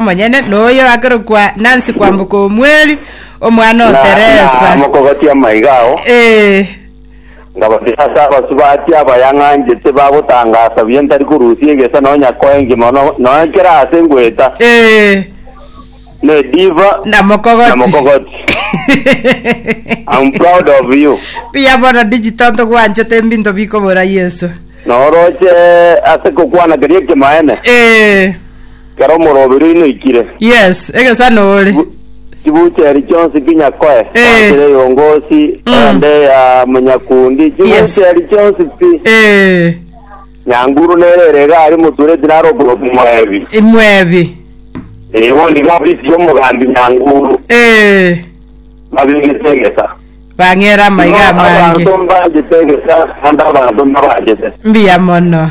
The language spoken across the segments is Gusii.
omonyene noyo akerokwa Nancy Kwamboka Omweli, omwana o Na- na Teresa. mokogotia amaiga ao Eh, ngabatira ase abasubati abayang'anchete bagotangasa buya ntari korusia egesa nonya koa engima no- nonya kera ase ngoeta eh, ne diva na mokogoti. na mokogoti I'm proud of you Buya bono digital ntogwanchete mbinto bikobora Yesu. noroche ase kokwana keria ekemaene Eh, Kera omorobiri oino oikire. Yes, egesano ore. Chibucheri chionsi kinyakoe Eh. goakera eyongosi Mm. ende ya monyakundi Yes. chibucheri chionsi pi Eh, nyanguru nere ere iga aria motureti naro okoroku moebi imwebi. Eh, bondi iga ofisi y'omogambi nyanguru Eh, babegete egesa bang'era amaiga amange. abanto mbagete egesa ande abanto mbabagete Mbuya mono.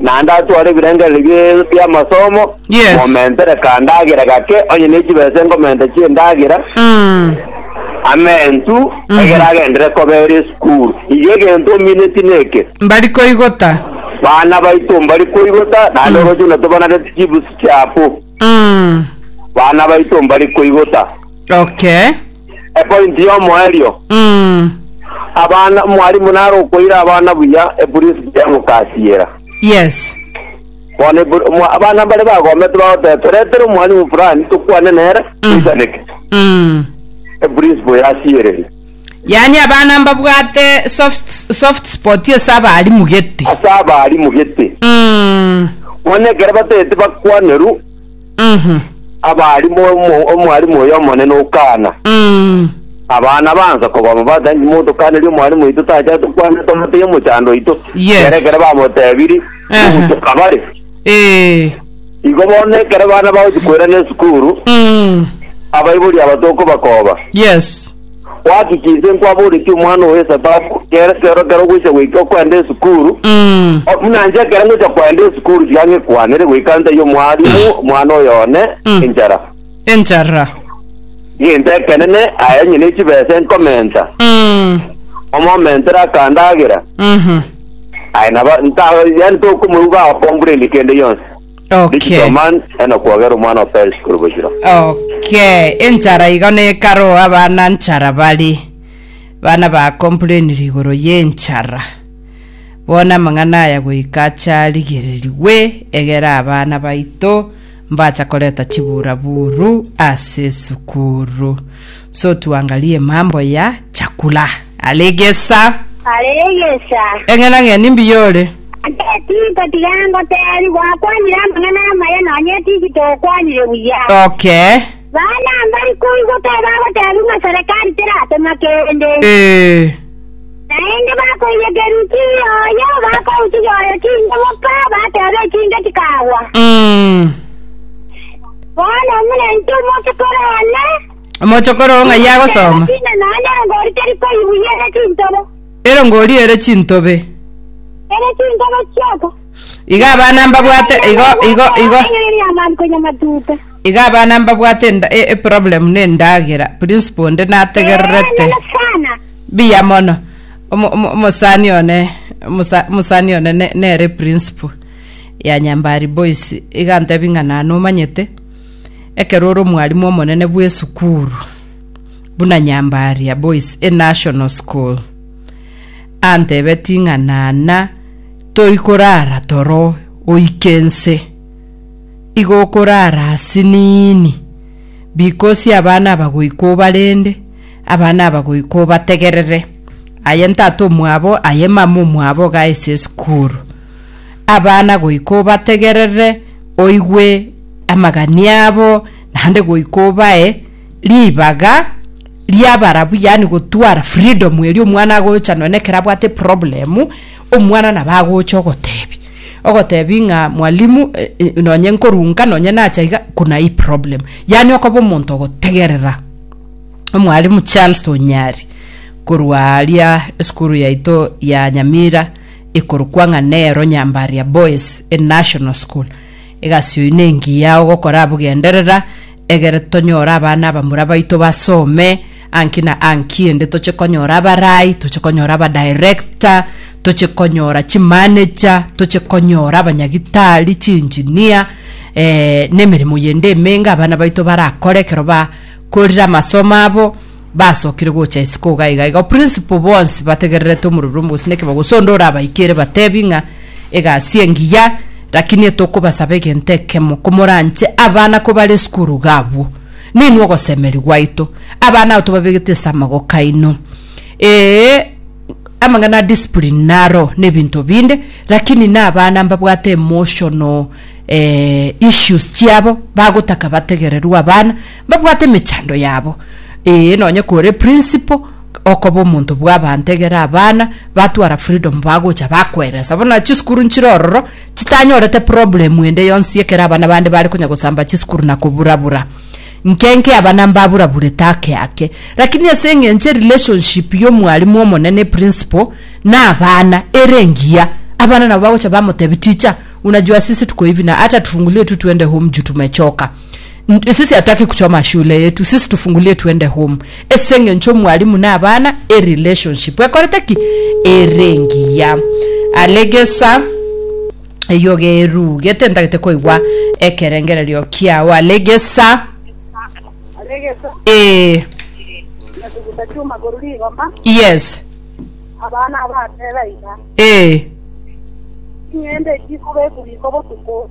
naende atware ebirengererio bie- bi'amasomo, Yes. momentere kandagera gake, onye ne chibesa enkomente chi'endagera, Mm. amentu, Mhm. egere agendere kobera esukuru. Iga egento omineti neke, mbari koigota bana baito mbari koigota, naende oroche buna tobanareti chibusi chiabu, Mm. bana baito mbari koigota. okay epointi y'omoerio Mm. abana mwarimu naro okoira abana buya epurinsipo y'omokasiera Yes. bono epu- mwa- abana mbare bagomete bagoteba toretere omwarimu fulani tokwane nere Mm. toisaneke Mm. epurinsipo yasiereri Yaani abana mbabwate soft, soft spot ase abarimu gete. ase abarimu gete Mm. bono ekero batete bakwaneru Mhm. Abaalimu omo- omwalimu oyo omonene o Kana. Mm. Abana bansa kobama bati anyi monto Kana ri omwalimu oito tacha tokwane tomoteye omochando oito. Yes. Ere ekero bamotebiri, Ehe. ogochoka bare. Eh. Igo bono ekero bana bagochi koirana esukuru, Mm. abaibori aba tokobakoba. Yes. Gaki ki inse nkwaboretie omwana owe esababu kere kero kero gocha goika okwenda esukuru Mm. O, buna inche ekero ngocha kwenda esukuru tiga ngekwanere goika ntai omwalimu omwana oyo one Mm. enchara Enchara. egento ekenene aye onye nechibesa enkomenta Mm. omomentere akandagera Mhm. aye naba nta yani tokomoigwa akombureni kende yonsi Okay. Digital man ena kwagera omwana wa Paris korobojira. Okay, enchara iga nekaro abana nchara bari bana ba complainire igoro yenchara bono amang'ana aya goika acharigererigwe egere abana baito mbacha koreta chiburaburu ase esukuru So tuangalie mambo ya chakula. Are egesa. Are egesa. Eng'ena ng'eni mbuya ore. Ase tinko tiga ngotebi, gwakwanire amang'ana amaya nonya etiki tokwanire buya. Okay. Bana mbari koigwa kae bagotebi ng'a serekari teratoma kende. Ee. Naende bakoiyekeru chiyo oyo, bakouchiga oyo chinke boka, bateba echinke chikagwa. Mm. Bono omonto omoke korane. Omochokoro oo ng'ai agosoma? Inde naende erongori teri koibuya ere chintobo. Erongori ere chintobe. Ere chintobo chioko. Iga abana mbabwate igo igo igo. Eng'eri ya man konya matuta. Iga abana mbabwate enda- e- e problem ne ndagera. Principal onde nategererete. Nene sana. Biya mono. Omo- omo- Omosani one omosa- omosani one ne- nere principal ya Nyambari Boys. Iga ntebi ng'a na nomanyete. ekero ore omwalimu omonene bw'esukuru buna Nyambaria Boys e National School, antebetie ng'a nana toi korara toro oike ense, igo okorara asiniini, bikosi abana aba goika obarende, abana aba goika obategerere, aye ntata omwabo, aye mama omwabo iga ase esukuru. abana goika obategerere, oigwe amagani abo, naende goika obae ribaga ri'abarabwo, yaani gotwara freedom eria omwana agocha nonya na ekero abwate eproblem, omwana nabo agocha ogotebia, ogotebia ng'a mwalimu eh eh nonye nkorunka nonye nacha iga kuna hii problem, yaani okoba omonto ogotegerera. Omwalimu Charles Onyari korwa aria esukuru yaito ya Nyamira, ekorokwa ng'a nero Nyambaria Boys e National School. Egasi oyi nengiya ogokora abwo genderera egere tonyore abana abamura baito basome anki na anki ende toche konyora abarai toche konyora aba director toche konyora chi manager toche konyora abanyagitari chi engineer eh, nemeremo yende emenge abana baito barakore ekero bakorire amasomo abo basokire gocha isiko iga iga iga principal bonsi bategererete omorurumbe gose neke bagosonda ore abaikere batebi ng'a egasi engiya lakini etokobasaba egento ekemo komoranche abana kobare esukuru gabwo ninwe ogosemeria gwaito abana abo tobabegete ase amagoko aino ee amang'ana a discipline naro na ebinto binde lakini na abana mbabwate emotional eh, issues chiabo bagotaka bategererwe abana Babwate emechando yabo, ee, nonye kore principle okoba omonto bw'abanto egere abana batwara freedom bagocha bakweresa bono chisukuru nchire ororo chitanyorete problem ende yonsi ekero abana bande bare konya gosamba chisukuru na koburabura nke nke abana mbaburaburete ake ake lakini ase eng'encho erelationship y'omwalimu omonene principle na abana ere engiya abana nabo bagocha bamotebi teacher unajua sisi tuko hivi na hata tufungulie tu twende home juu tumechoka Sisi ataki kuchoma shule yetu sisi tufungulie twende home ase engencho omwalimu na abana e relationship ekorete ki ere engiya alegesa eyio gerugete ntagete koigwa ekerengererio kiao alegesa aregesa ee nasuguta chuma koru rigoma yes abana abateba iga ee ching'ende chikobekwa riko botuko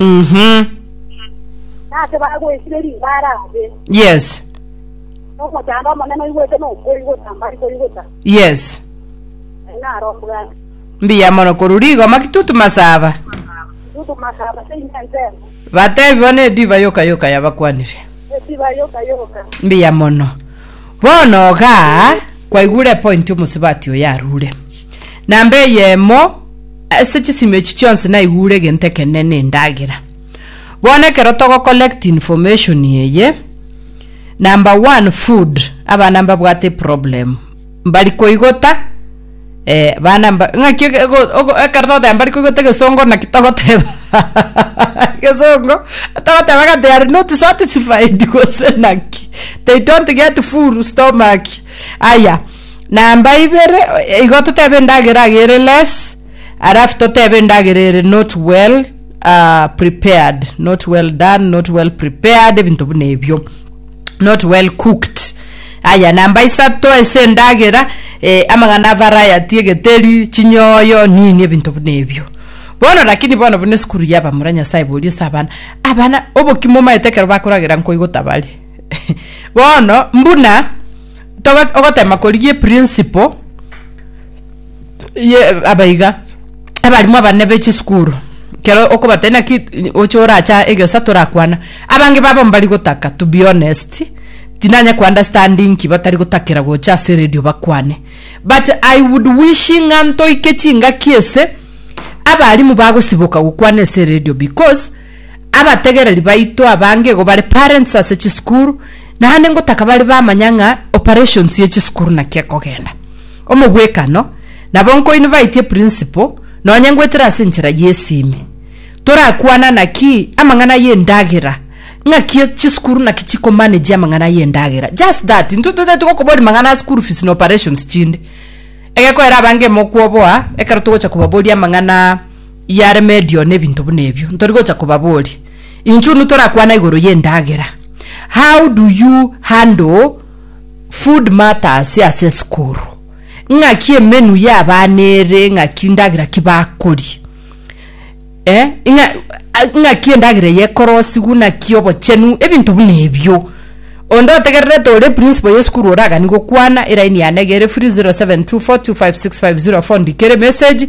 Mhm. Nase bagwesire ribaare aase. Yes. Nomochando omonene oigwete nokoigota mbari koigota. Yes. Aye naro mbwate. Mbuya mono korwa rigo makitutu masaba. Tutu masaba se inche nsemo. Batebi bono ediba yoka yoka yabakwanire. Esiba yoka yoka. Mbuya mono. Bono ga kwaigure point omosibati oyo arure. Na mbe eyemo ase chisemi echi chionsi naigure egento ekenene na endagera. Bono ekero togo collect information eye, number one food, abana mbabwate problem, mbari koigota eh, bana mba, ng'aki ege- ego- ogo- ekero togoteba mbari koigota egesongo naki togoteba egesongo togoteba ng'a they are not satisfied gose naki they don't get full stomach aya. Namba ibere igo totebe endagera aga ere less alafu totebe endagera ere not well uh, prepared not well done not well prepared ebinto buna ebio not well cooked aya namba isato ase endagera eh, amang'ana a variety egeteri chinyoyo nini ebinto buna ebio bono lakini bono buna esukuru yabamura nyasae boria ase abana abana obokima omaete ekero bakoragera nkoigo tabari bono mbuna togo- ogotema korigia eprinciple ye aba iga, abarimu abanene be chisukuru, ekero okobatebia naki i- oche oracha egesa torakwana, abange babo mbari gotaka to be honest, tinanya ko understand inki batari gotakera gocha ase eredio bakwane, but i would wishing ng'a ntoike chingaki ase abarimu bagosiboka gokwana ase eredio because. Abategereri baito abange igo bare parents ase chisukuru, naende ngotaka bare bamanya ng'a operations ye chisukuru naki ekogenda. Omobwekano, nabo nkoinvite principal nonye ngoetera ase enchera y'esimi. Torakwana naki amang'ana y'endagera, ng'aki chisukuru naki chiko manage amang'ana y'endagera. Just that, intwe totaeti gokoboria mang'ana a school fees na operations chinde. Egekoera abange mokwoboa, ekero togocha kobaboria amang'ana yaremedio na ebinto buna ebio ntori gocha kobaboria inche unu torakwana igoro ye endagera how do you handle food matters ase esukuru ng'aki emenu ya abana ere ng'aki endagera ki bakoria eh ng'a ng'aki endagera eye ekorosigwa naki obochenu ebinto buna ebio onde otegererete ore principal ya esukuru oragani gokwana eraini yane iga ere free 0724256504 ndikere emesegi.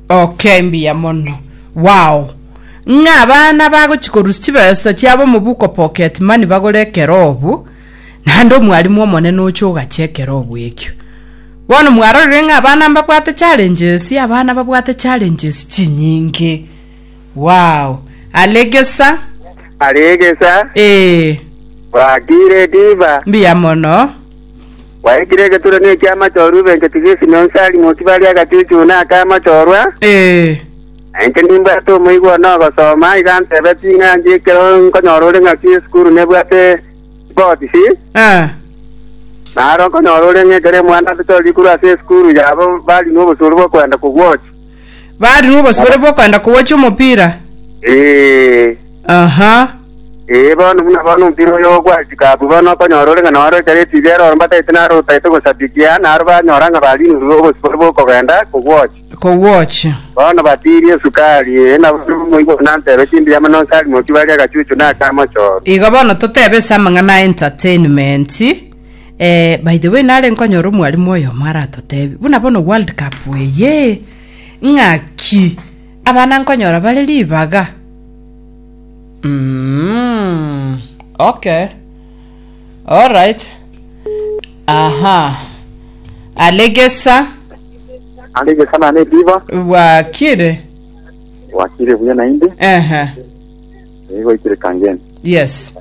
Oke mbuya mono. Wao! Ng'a abana bagochia korusia chibesa chiabo omobuko pocket money bagore ekerobu, naende omwarimu omonene oche ogachia ekerobu ekio. Bono mwarorire ng'a abana mbabwate challenges? Abana babwate challenges chinyinge. Wao! Aregesa. Aregesa. Ee. Bwakire riba. Mbuya mono. Gwaikire egeturanio eki'amachorwa ebenchetwe Yesu na onsi ari motibe aria agachuchuna na ake amachorwa, na inche nimbwate omoigwa one ogosoma, iga antebetie ng'a ndie ekero nkonyora ore ng'aki esukuru nebwate botisi, na aro nkonyora ore ng'a ekero emuandansete ore rikuru ase esukuru yabo barinwe obosooru bw'okwenda kogwochia. Bari nobosibore bw'okoenda kowacha omopira. Ee, Aha. ee, bono buna bono omopira oyo gwachika abwo, bono okonyora ore ng'a nore ekero etibi ero ore mbataete naro otaete gosabikia, naro banyora ng'a barinirwe obosibore bw'okogenda kogwocha. Kogwocha. Bono batiirie esukari, ee, nabo omoibwa nantebe chimbuya mono nse arimoki barie agachuchu na akamochoro. Igo bono totebe ase amang'ana a entertainment. Eh, by the way nare nkonyora omwalimu oyomo aratotebi buna bono world cup eye ng'aki abana nkonyora bare ribaga mm, okay alright aha alegesa Alige sana ne diva. bwakire Wakire buya na indi. ehe Ego ikire kangeni. yes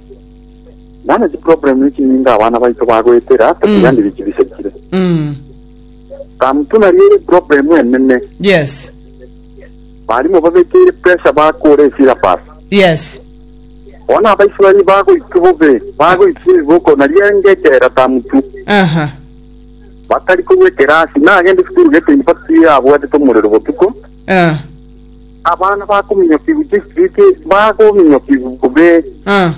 Nane chiproblem echi ninga abana baito bagoetera Mm. tokiganire chibisekire Mm. kamutu nario ere problem enene Yes. barimo babekeire pressure bakora esyllabus Yes. bona abaisraeli bagoitwa bobe bagoitwa ebiboko nario engechera tamutu Aha. batari korwa ekerasi nagende esukuru gete university abwatete omorero botuko Eh, Abana bakominyokigwa district bakominyokigwa bobe eh,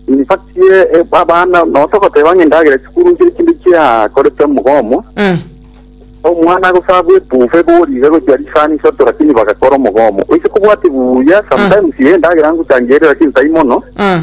in fact ye eh, abana notogoteba ng'a endagera chikuru nche ekinde chiakorete omogomo eh. omwana agosaba ebufe boriga gochia risani isato lakini bagakora omogomo oise kobwati buya sometimes ye endagera ngochangere lakini tai mono Eh,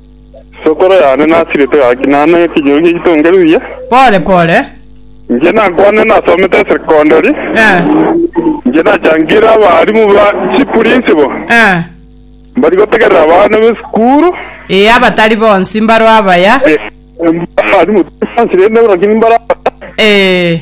Sokoro yane nasirete gaki, na ane ekenyoro gie itonge riria. Pore pore. Inche nakwane nasomete esekondari. Eh. Inche nachangire abarimu ba chipurinsibo. Eh. Mbari gotegerera abana b'esukuru. Eh, abatari bonsi mbaro abaya. Eh, abarimu tari bonsi rende, rakini mbaro abaya. Eh.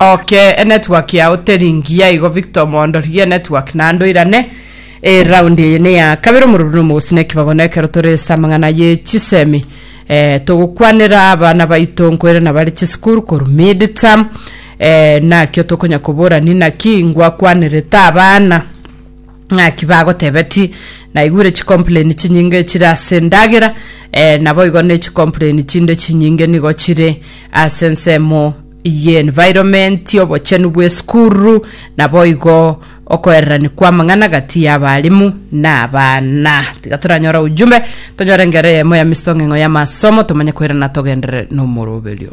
Ok e network yao teri ngiya igo Victor Omondo rigia network naende oirane e round eye neya kabere omororo na omogosi na ekibago na ekero tore ase amang'ana ye chisemi eh, togokwanera abana baito nkoirana bare chisukuru korwa mid term eh, nakio tokonya kobora ni naki ngwakwanerete abana ng'aki bagotebeti naigure chicomplain chinyinge chire ase endagera eh, naboigo ne chicomplain chinde chinyinge nigo chire ase ensemo Eye environment y'obochenu bw'esukuru naboigo okoererani kw'amang'ana gati y'abalimu na abana. Tiga toranyore ujumbe, tonyore engero eyemo ya misitong'engo y'amasomo, tomanye koirana togenderere n'omoroberio.